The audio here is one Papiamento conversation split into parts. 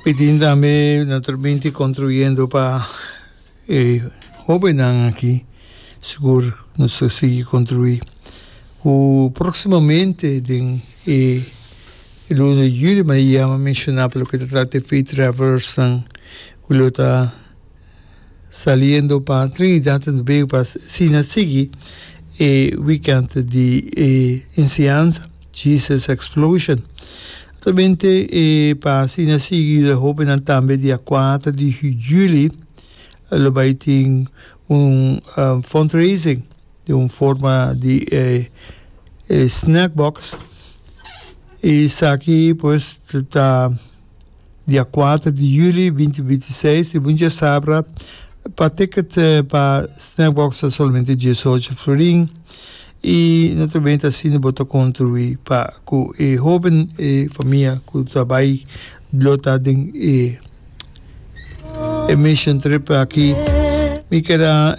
Pitin tambe na terminti construyendo pa e hobennan aki. Sigur nos ta sigui construi. Cu proximamente den e luna di juli, ma e ya a menshoná pa loke ta trata e free travelers nan, cu lo ta Saliendo pa Trinidad and Tobago pa asina sigui e weekend di e enseñansa Jesus Explosion. Atamente e pa asina sigui yu e hobennan tambe dia kuater di juli lo bai tin un fundraising den un forma di e snack box. Esaki pues ta Dia a kuater di juli binti binti i seis e bunchi asabra pa ticket pa Snackbox ta solamente diesocho florin i naturalmente asina bo ta kontribuí pa ku e hoben e famia ku ta bai lo ta den e e mission trip aki. Mi keda.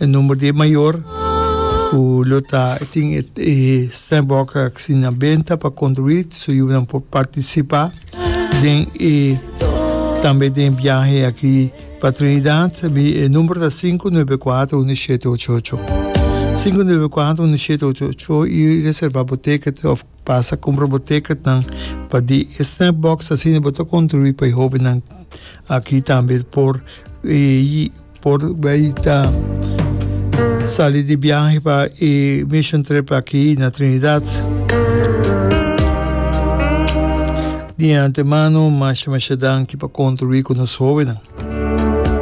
e number di e mayor cu lo ta e tin e e stem box aki na benta pa construi su yu nan por participa den e tambe den biahe aki pa Trinidad mi e number ta sinku nuebe kuater unu shete ocho ocho sinku nuebe kuater unu shete ocho ocho y reserva bo ticket of Pasa ku un robotecretnan pa di e snack box asina bo ta kontribuí pa e hóbennan aki tambe por por bai ta sali di biahe pa e mission trip aki na Trinidad. Di antemano masha masha danki pa kontribuí ku nos hóbennan.